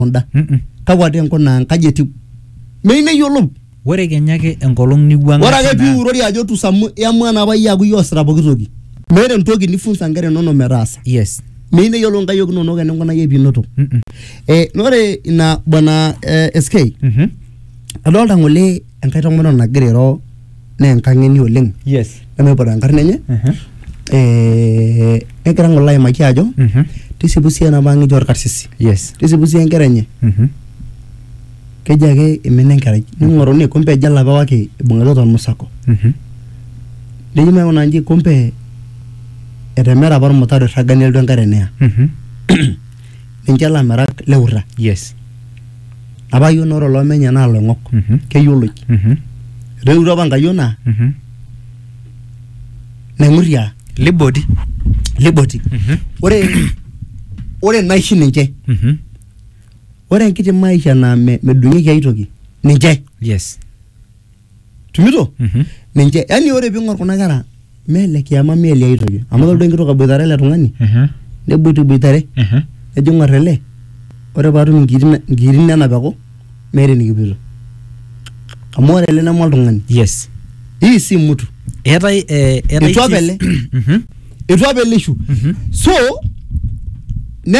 kunda Mm-mm. kakwa dee nkuna nkaji etiu meyieu neyiolou ore kenya ake enkolong niwuang'a ore ake tina- piurori ajo tusamu iamua napa iyie aku iyie oosita poki toki meeta entoki nifunza nkera inonok metaasa yes meyieu neyiolou nkayiok inonok eninkunayie piinoto Mm-mm. eh, na ore ina bwana eh, sk Mhm. adolta ng'ole enkae tomononi nagira airo naa enkang'eni oleng yes nemaiput enkarna enye Mhm. eh, negira ng'ole aimaki ajo Mhm. tisipu sii enapa ang eji orkarsisi yes tisipu sii enkera enye Mhm. keji ake imina enkerai ning'oruni kumbe eji olapa waki ibung'ita tormusako Mhm. neji maing'una nji kumbe etemera apa ormutaro irraga nelotu enkare neya Mhm. ninche ilamirak leurra yes Apa yiok naa ore oloomenye naa iloing'ok. Mhm. Keyioloi. Mhm. Etoiwutuo apa Nkayiona Mhm. Naing'urria Liboti. Liboti. Mhm. Ore ore naishi ninche. Mhm. Ore enkiti maisha naa me medung'ieki ae toki ninche. Yes. tumito Mhm. ninche yani ore ping'or kuna kera mele kiama mele ai toki amu toldo enkitok aboitare ele tung'ani Mhm. neboitiboitare Mhm. nejo ng'or ele ore paatum inkiri na- inkiri nena peku meeta enikipoito amu ore ele neme oltung'ani yes hii si mtu eetae eh, eetae Etua sii- pele. Mhm. etua pelishu Mhm. so ne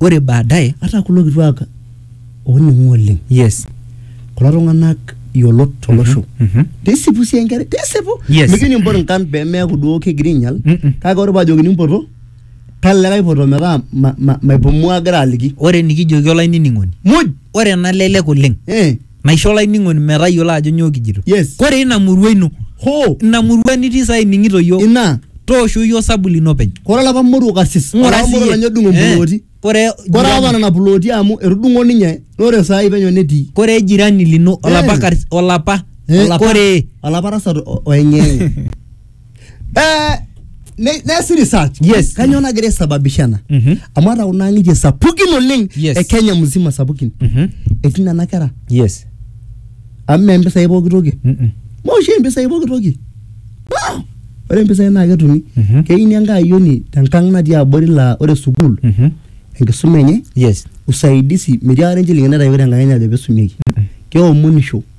ore baadaye ata kulo kituak ooning'u oleng yes kulo tung'anak yiolot tolosho mhm. pisipu sii enkerai pisipu Yes. mijo nimpot nkan pemeeku duo kegira ainyial Mm-mm. kake ore paajokini mpoto tala likae poto metaa ma- ma- maipumua agira aliki ore enikijoki olainining'oni muj ore enalelek oleng eh. naisho olainining'oni metayiolo ajo nyoo kijito Yes. kore ina murua ino hoo ina murua nitii saa ining'ito yiok ina toosho yiok osabu lino openy kore olapa moruo kasis Ng'ura olapa moruo siyie. lenye odung'o Eh, mpulooti kore kore apa jirani- nena pulooti amu etudung'o ninye nore saai penyo netii kore jirani lino olapa Eh. karis- olapa Eh, olapa- kore olapa tasat o- oeng'eng'e Eh, ne- neesi research Yes. kanyoo nagira aisababisha ena Mhm. amu ata kuna ang'itie sapukin oleng Yes. e kenya mzima sapukin Mhm. etii nena kera yes amu mee mpisai pooki toki Mm-mm. maoshi mpisai pooki toki No! ore mpisai naa ketumi Mhm. keini enkae ayioni tenkang natii abori laa ore sukuul Mhm. enkisuma enye yes usaidisi metii akata enchilingini naitayioki tenkang enye ajo peisumieki keomonisho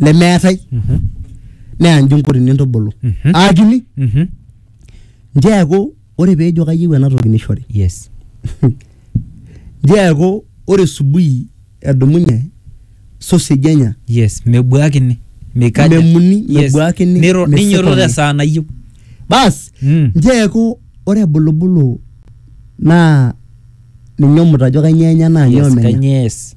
lemeetae Mhm. neya nji nkoti nintubulu Mhm. aakini Mhm. nji eeku ore peejo kayieu ena toki nishori Yes. nji eeku ore subui edumunye sausage enya Yes. Mebuakini. Mikaja. Memuni, Yes. mebuakini, Niro- mesikoni. Ninyototo esaa nayieu. bas Mm. nji eeku ore ebulubulu naa ninye omutajo kainyoo enya naa nyoo Yes. menya Kanye yes.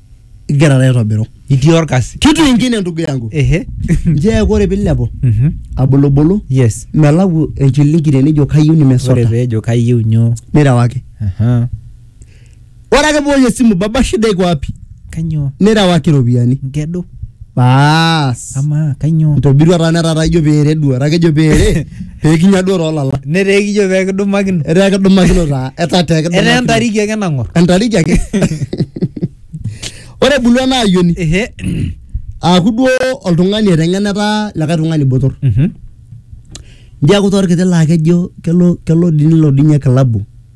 igira taa aitobiru itii orkasi kitu ingine ndugu yangu ehe njee ore pilepu Mhm. abulubulu yes melau enchilingi tenijo kayieu ore nimesota peejo kayieu nyoo nirewaki Aha. ore ake poosh esimu baba shida iko wapi kanyoo nirewaki iropiyiani nkedo baas amaa kainyoo intobirua taa netaa ijo peere duo etaa kejo peere peekinya duo toolala netaa ekijo pee kidumakino etaa kedumakino taa etaa tee etaa kedumakino entariki ake nang'or entariki ake ore ebulu ena ayioni ehe aaku duo oltung'ani eteng'ena etaa likae tung'ani botor Mhm. njiaku torkiti laa kejo kelo kelo dii nelo dii ninye kilabu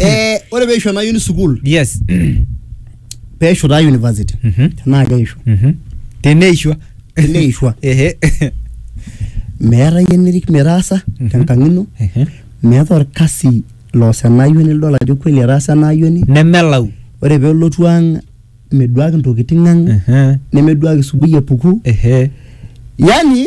Eh, ore peisho ena uni sukuul yes peisho taa university Mhm. tenaa keisho Mhm. teneishwa teneishwa ehe meeta yie nirik metaasa Mhm. tenkang ino Ehe. meeta orkasi loos ena ayioni lidol ajo kweli etaasa ena ayioni nemelau ore pelotu ang meduaki ntokitin ang Ehe. nemeduaki subuhi epuku ehe yani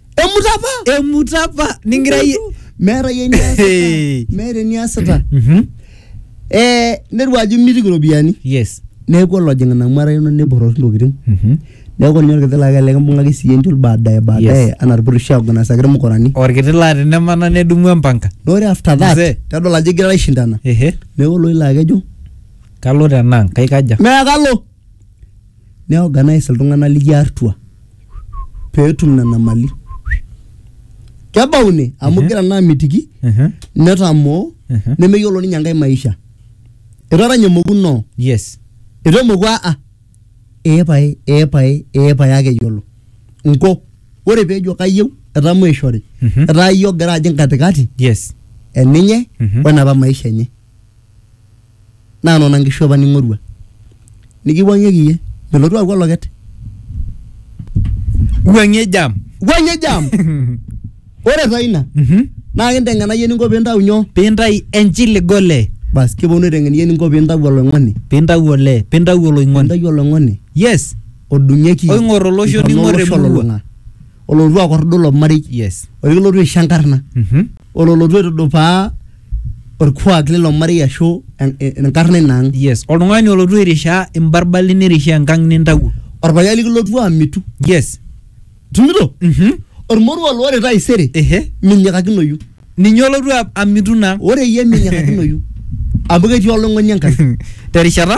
emuta apa emuta apa ningira iyie meeta yie eniasita Hey. meeta eniasita Mhm. eh neru ajo imitiki iropiyiani yes neeku olojing ina mara ino neborroki intokitin Mhm. neeku ninye orkiti laa kelelek imbung'aki siyie enchul baadaye baadaye Yes. anaa irpurisho aoganasaki irmukurani orkiti laa tenemana nedumu empanka na ore after that Mzee. tedol ajo igira aishindana ehe neeku oloilo akejo kalo tenang kaikaja meekalo nei organise iltung'ana lijo atua peetum nena mali. Kebau ine amu Mhm. igira naa amitiki Ehe, netamoo ehe. nemeyiolo ninye enkae maisha. Etaranya emoku no, Yes. eitu emoku a a. Ee pae, ee pae, ee pae ake eyiolo. Nko, ore peejo kayieu etaa maishori. Mhm. Etaa iyie ogira ajing katikati Yes. eninye Mhm. wenapa maisha enye. naa nona nkishu apa ning'orua nikiwuang'ieki iyie melotu aaku oloket wuang'ie jam wuang'ie jam ore taa ina Mhm. naa kinteng'ena iyie eninko piintau nyoo pintai enchili gole bas kiponu aiteng'en iyie eninko piintau oloing'oni pintau ole pintau oloing'oni pintau oloing'oni yes odung'ieki Oing'or olosho, intona ning'or olosho emurua. olulung'a. olotu akordu ilo marei yes olikilotu aisho enkarna Mhm. ololotu aitudupaa orkuak lilo marei ashu en- en- enkarna ina ang yes oltung'ani olotu airishaa imbarbali nirishaa enkang nintawuo orpayian likilotu amitu yes tumito mhm ormoruo loore taisere ehe minyikakinoyu ninye olotu a- amitu naa ore iyie minyikakinoyu amu ketii olong'oni enkai terishata